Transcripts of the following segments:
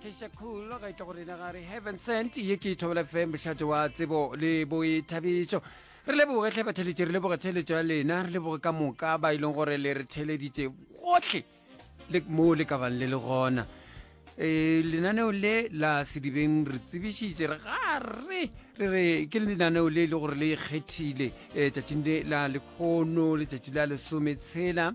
kesha cool ga itla go rena ga re heaven sent ye ke ithobela fm bošate wa tsebo le boithabišo re leboge tlhe batheletše re leboge theletšo ya lena re leboge ka moka ba e leng gore le re theleditše gotlhe le mo le ka bang le le gona e lenaneo le la sedibeng re tsebišitše re gare re re ke lenaneo le e le gore le ikgethile um tšatšing le la lekgono letšatši la lesometshela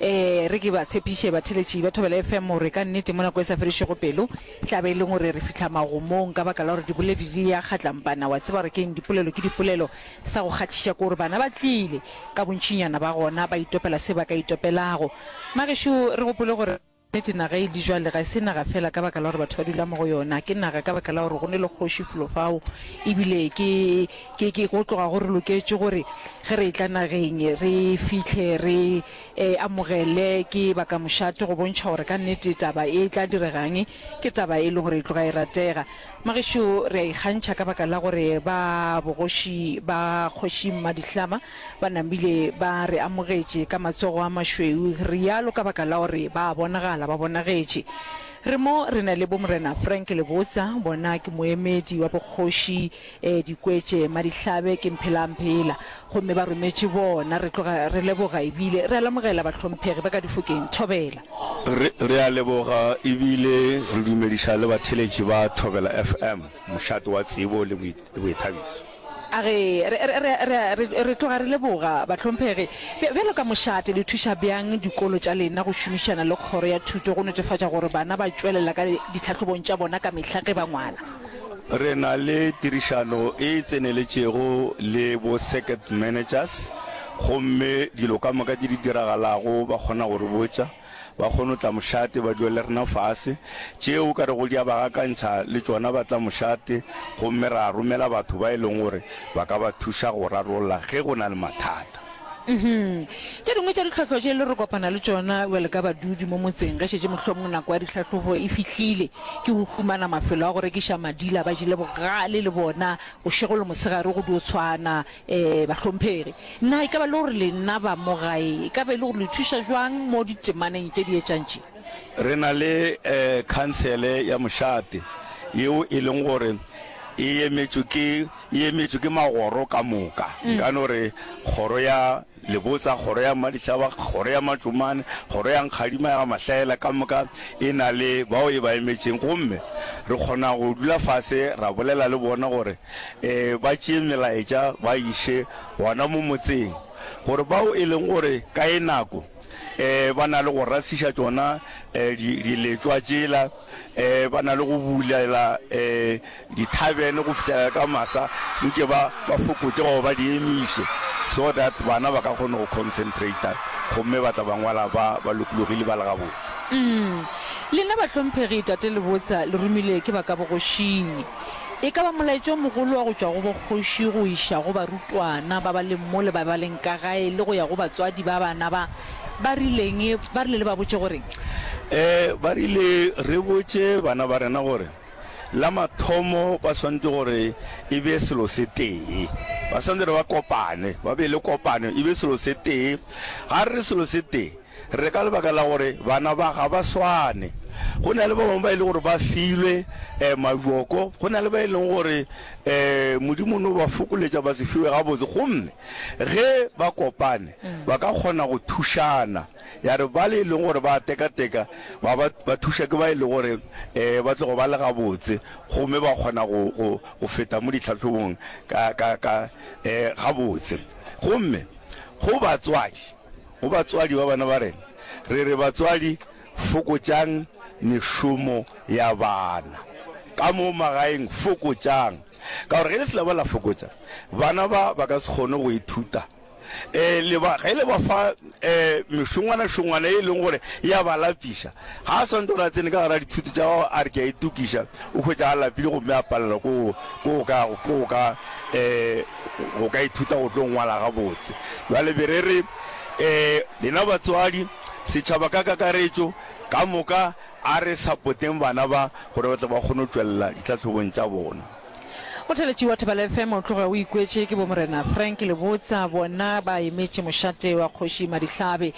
Ee, re ke ba tshepiše batheletši ba Thobela FM gore ka nnete mo nako e sa fedišego pelo e tla be e le gore re fihla magomong ka baka la gore diboledi di ya kgatlampana. Wa tseba gore ke'ng? Dipolelo ke dipolelo. Sa go kgathiša ke gore bana ba tlile, ka bontšinyana ba gona, ba itopela se ba ka itopelago. Magešo, re gopole gore. Nnete, naga e di jwale ga e se naga feela ka baka la gore batho ba dula mo go yona. Ke naga ka baka la gore go ne le kgoši flo fao, e bile ke, ke, ke go tloga go re loketše gore ge re etla nageng re fihle re e amogele ke bakamošate go bontšha gore ka nnete taba e tla diregang. Ke taba e lego gore e tloga e ratega. Magešo, re a ikgantšha ka baka la gore ba bogoši ba Kgoši Mmadihlama, Ba namile ba re amogetše ka matsogo a mašweu, rialo ka baka la gore ba a bonagala, ba bonagetše. Re mo re na le Bomorena Frank Lebotsa, bona ke moemedi wa bokgoši, eh, Dikwetše, Madihlabe, ke Mphelaamphela. Gomme ba rometše bona. Re tloga re leboga ebile re a lamogela bahlomphegi ba ka Difokeng. Thobela. Re, re a leboga ebile re dumediša le batheletši ba Thobela FM, mošate wa tsebo le boithabiso. A re, Re, re, re, re, re, re tloga re leboga, bahlomphegi. Bj, bjalo ka mošate, le thuša bjang dikolo tša lena go šomišana le Kgoro ya Thuto go netefatša gore bana ba tšwelela ka ditlhahlobong tša bona ka mehla ge ba ngwala? Re na le tirišano e tseneletšego le bo-circuit managers, gomme dilo ka moka tše di diragalago ba kgona go re botša. Ba kgono tla mošate ba dula le rena fase. Tšeo o ka rego di a ba gakantšha le tšona ba tla mošate gomme ra romela batho ba e leng gore ba ka ba thuša go rarolla ge go na le mathata. Uhum. Tše dingwe tša ditlhwahlwa tše le re kopana le tšona bjale ka badudi mo motseng ge šetše mohlomong nako ya dihlahlobo e fihlile ke go humana mafelo a go rekiša madila ba jele bogale le bona bošego le mosegare go dio tshwana Ee, bahlomphegi, na e ka ba le gore lena ba mo gae e ka ba e le gore le thuša jwang mo ditemaneng tše di etšang tše? Re na le eh, khansele ya mošate yeo e leng gore e emetšwe ke e emetšwe ke magoro ka moka, nka no re kgoro ya Le botsa kgoro ya Mmadihlaba, kgoro ya Matšomane, kgoro ya Nkgadima ya ga Mahlaela ka moka e na le bao e ba emetšeng gomme re kgona go dula fase ra bolela le bona gore e ba tšee melaetša ba iše gona mo motseng gore bao e leng gore ka e nako e ba na le go rasiša tšona e diletšwa tšela um ba na le go bulela um dithabene go fitlhelela ka masa nke ba ba fokotse goba ba di emiše so that bana ba ka kgone go concentrata gomme ba tla ba ngwala ba ba lokologile ba le gabotse mm. lena bahlomphegi tate lebotsa le romilwe ke ba ka bogošing e ka ba molaetšo mogolo wa go tšwa go bokgoši go iša go barutwana ba ba leng mo le ba ba leng ka gae le go ya go batswadi ba bana ba Ba rileng? Ba rile le ba botše gore. Ee, ba rile re botše bana ba rena gore la mathomo ba swantše gore e be selo se tee. Ba swantše re ba kopane, ba be le kopano, e be selo se tee. Ga re selo se tee, re ka lebaka la gore bana ba ga ba swane. Go na le ba bangwe ba e le gore ba filwe um mabjoko, go na le ba e leng gore um Modimo no ba fokoletša ba se fiwe gabotse. Gomme Ge ba kopane, ba ka kgona go thušana. Ya re bale e lego gore ba a tekateka ba ba ba thuša ke ba e lego gore um ba tlogo ba le gabotse gomme ba kgona go go go feta mo ditlhahlobong ka ka ka um gabotse. Gomme go batswadi, go batswadi ba bana ba rena, re re batswadi fokotšang mešomo ya bana ka mo magaeng, fokotšang. Ka gore ge le se la ba la fokotša, bana ba ba ka se kgone go ithuta. E le ba, ge le ba fa e, mešongwana-šongwana ye e leng gore ya ba lapiša, ga a swantse gore a tsene ka gare a dithuto tša gago a re ke a itukiša, o hwetša a lapile gomme a palelwa ko go ka, ko go ka, e, go ka ithuta go tlo ngwala gabotse. Bjale be re re e, lena batswadi, setšhaba ka kakaretšo ka moka, A re sapoteng bana ba gore ba tle ba kgone go tšwelela ditlhahlobong tša bona. Motheletši wa Thobela FM o tloga o ikwetše ke bomorena Frank Lebotsa, bona ba emetše mošate wa kgoši Madihlabe.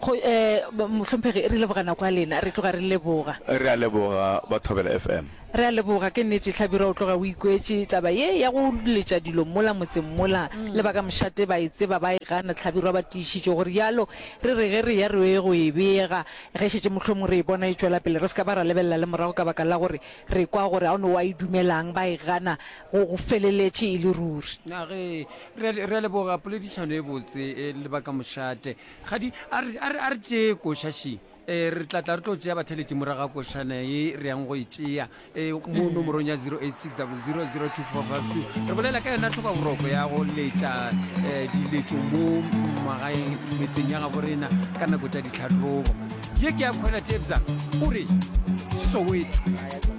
Kgo, eh, mohlomphegi, re leboga nako ya lena. Re tloga re leboga. Re a leboga ba Thobela FM. Re a leboga. Ke nnete Hlabirwa o tloga o ikwetše taba ye ya go letša dilo mola motseng mola, le ba ka mošate ba e tseba ba e gana. Hlabirwa ba tiišitše go rialo, re re ge re ya re yo go e bega. Ge e šetše mohlomongwe re e bona e tšwela pele, re se ka ba ra lebelela le morago ka baka la gore re kwa gore ao no wa e dumelang ba e gana go go feleletše e le ruri. Na ge re, re a leboga poledišano e botse e le ba ka mošate. Kgadi, a re, a re, a re tšee koša šii. Ee, re tla tla re tlo tšea batheletši morago ga košana ye re yang go e tšea. e mo nomorong ya 0860002452 re bolela ka yona tlhoba boroko ya go letša eh, diletšo mo magaeng metseng ya gabo rena ka nako tša ditlhatlobo ye ke ya kgwela tebza o re soweto